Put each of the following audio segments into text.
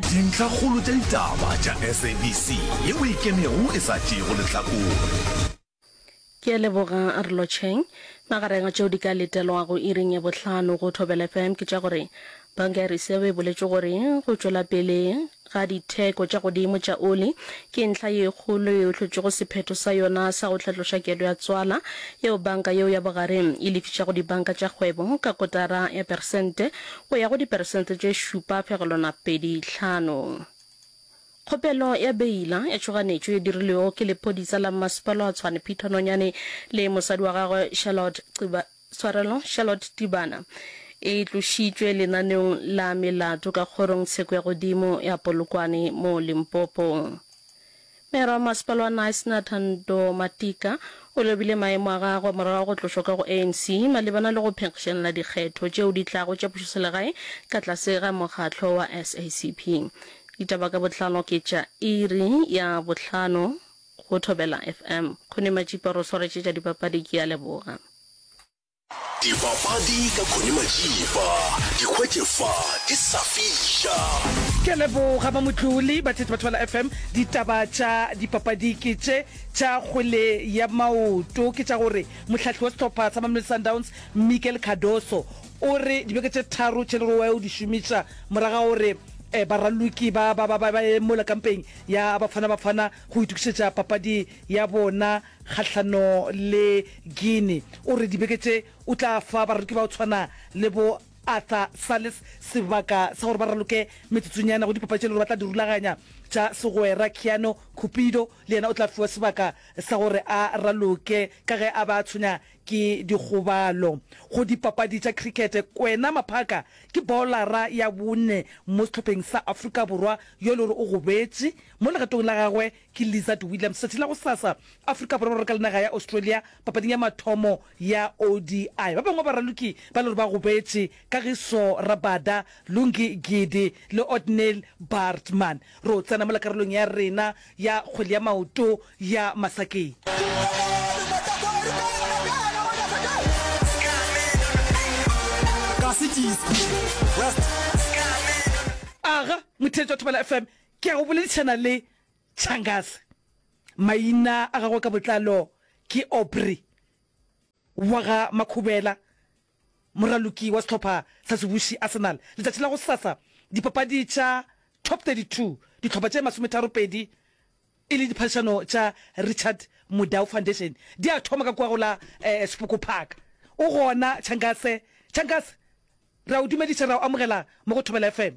Dintlhakgolo tša ditaba tša SABC ye o e kenego e sa tšeego lehlakore. Ke a leboga Rlo Cheng. Magareng a tšeo di ka letelwago iring ya bohlano go Thobela FM ke tša gore Banka ya Reserve e boletše gore go tšwela pele ga ditheko tša godimo tša oli ke ntlha ye kgolo yeo e hlotšego sephetho sa yona sa go hlatloša kelo ya tswala yeo banka yeo ya bogareng e lefišago dibanka tša kgwebo ka kotara ya peresente go ya go diperesente tše šupa fegelwana pedi hlano. Kgopelo ya beila ya tšhoganetšo e dirilwego ke lephodisa la Mmasepala wa Tshwane Peter Nonyane le mosadi wa gagwe Charlotte Xiba, Tshwarelo, Charlotte Tibana e tlošitšwe lenaneong la melato ka kgorong tsheko ya godimo ya Polokwane mo Limpopo. Meyara wa Masepala wa Knysna, Thando Matika, o lobile maemo a gagwe morago ga go tlošwa ka go ANC malebana le go phenkgišanela dikgetho tšeo di tlago tša pušoselegae ka tlase ga mokgatlo wa SACP. Ditaba ka botlalo ke tša iri ya bohlano go Thobela FM. Kgoni Matšipa ro swaretše tša dipapadi, ke a leboga. Dipapadi ka Connie Majiba, di hwetše fa di sa fiša. Ke a leboga ba Motloli, Batheetsi ba Thobela FM. Ditaba tša dipapadi ke tše tša kgwele ya maoto, ke tša gore mohlahli wa sehlopha sa Mamelodi Sundowns Miguel Cardoso o re dibeke tše tharo tše le gore wa yo di šomiša morago ga gore um baraloki ba ba ba ba ba ye mola kampeng ya Bafana Bafana go itokišetša papadi ya bona kgahlano le Guinea. O re dibeke tše o tla fa baraloki ba go tshwana le bo Arthur Sales sebaka sa gore ba raloke metsotsonyana go dipapadi tše le gore ba tla di rulaganya tša segwera. Keanu Cupido le yena o tla fiwa sebaka sa gore a raloke ka ge a be a tshwenya ke dikgobalo. Go dipapadi tša cricket, Kwena Maphaka ke bowlara ya bone mo sehlopheng sa Afrika Borwa yo e le gore o gobetše mo legatong la gagwe Ke Lizard Williams. Tšatši la gosasa, Afrika Borwa ba raloka le naga ya Australia papading ya mathomo ya ODI. Ba bangwe ba baraloki ba le gore ba gobetše, Kagiso Rabada, Lungi Gidi le Ottnil Baartman. Ro tsena mola karolong ya rena ya kgwele ya maoto ya masakeng. Aga, motheetši wa Thobela FM, Ke a go boledišana le Changase. Maina a gagwe ka botlalo ke Aubrey wa ga Makhubela, moraloki wa sehlopha sa sebuši Arsenal. Letšatši la go sasa dipapadi tša Top 32, dihlopha tše masometharopedi e le diphadišano tša Richard Mudau Foundation, di a thoma ka kua go la Sepoko Park. O gona Changase? Changase, re a o dumediša, re a o amogela mo go Thobela FM.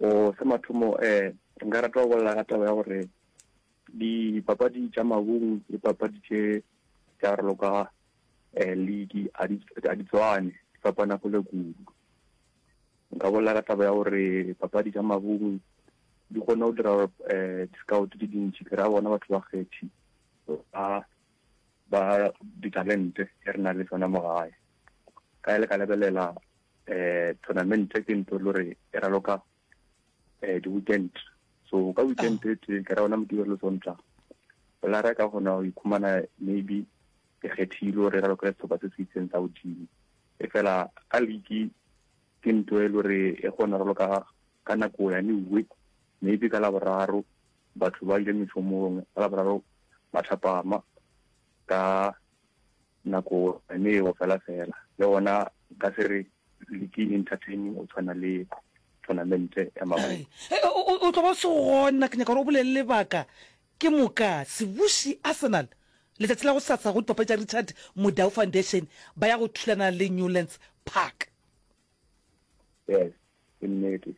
O, sa mathomo, um, nka rata go bolela ka taba ya gore dipapadi tša mabung le papadi tše tša re loka um league a di, a di tswane, di fapana kgole kudu. Nka bolela ka taba ya gore papadi tša mabung di kgona go dira gore um di-scout tše dintši, ke ra bona batho ba kgethi ba ba ditalente e re na le tsona mo gae. Ka le ka lebelela eh tournament ke ntho lo re e raloka eh di weekend so ka weekend e tse ka ra ona motho le sontsha la ra ka gona o ikhumana maybe ke kgethile gore ra lokela setlhopha se se itseng sa godimo e fela ka league ke ntho e le gore e kgona ralo ka ka nako ya neuwe maybe ka laboraro batho ba ile mešomong ka laboraro ba thapama ka nako ne e go fela fela le gona ka se re leke entertaining o tshwana le tournament ya mago o tlo ba se gona ke nyaka gore o bolele lebaka ke moka sebuši arsenal letsatsi la go satsa go dipape tša richard modau foundation ba ya go thulana le newlands park yes ke nnete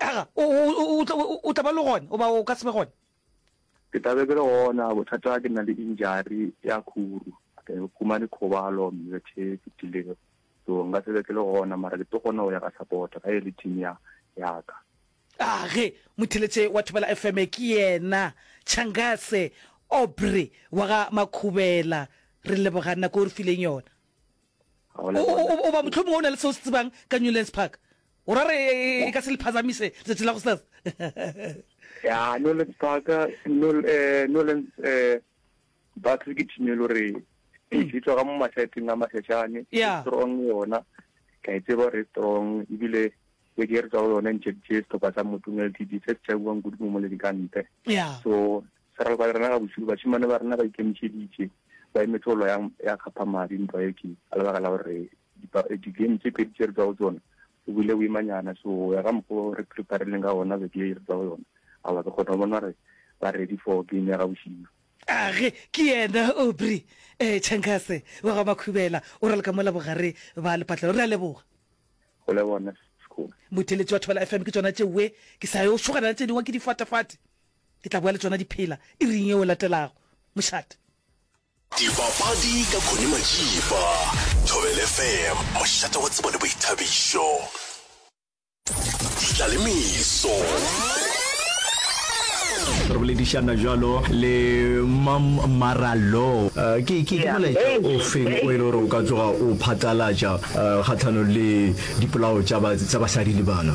aga o, o, o, o, tla- o, o tla ba le gona goba o ka se be gona ke tlabe ke le gona bothata ke nna le injari ya khuru ke humane khobalo mmethe e fetilego so nka sebe ke le gona mara ke tlo kgona go ya ka support ga e le team ya yaka age motheletše wa thobela fm ke yena changase obre wa ga makhubela re leboga nako o re fileng yona Oba mohlomongwe o na le seo se tsebang ka Newlands Park. O ra re e ka se le phazamise letšatši la go sas. Ya, Newlands Park, Newlands Park ke thime le gore e tswa ka mo mahlatseng a mahlashane. Yeah. Strong yona. Ka e tseba re strong ebile e ke re tswa go yona ntšhe tše setlhopha sa motumel td se se tšabuwang kudu mo moledikante. Yeah. So Sa re lebale rena gabošego, bašemane ba rena ba ikemišeditše, ba emetše go lwa ya, ya kgaphamadi ntwa ye ke, ka lebaka la gore dipa, di-game tše pedi tše re tšwa go tšona, go bile boimanyana, so go ya ka mokgwa o re prepareleng ka gona beke ye re tšwa go yona, aowa ke kgona go bona gore ba ready for game ya gabošego. Age ke yena Aubrey eh, Changase wa ga Makhubela, o raloka mola bogare ba lepatlelo. Re a leboga. Go leboga nna Sekgole. Motheletši wa Thobela FM ke tšona tšeue ke sa yo šogana le tše dingwe ke difatefate. Ke tla boa le tsona di phela iring yeo e latelago. Mošate. Dipapadi ka Connie Matšipa, Thobela FM, mošate wa tsebo le boithabišo. Ditlalemeso. re boledišana jalo le mam maralo eh, ke ke ke molaetša o feng o e le gore o ka tsoga o phatlalatša eh, kgatlhanong le dipolao tša basadi le bana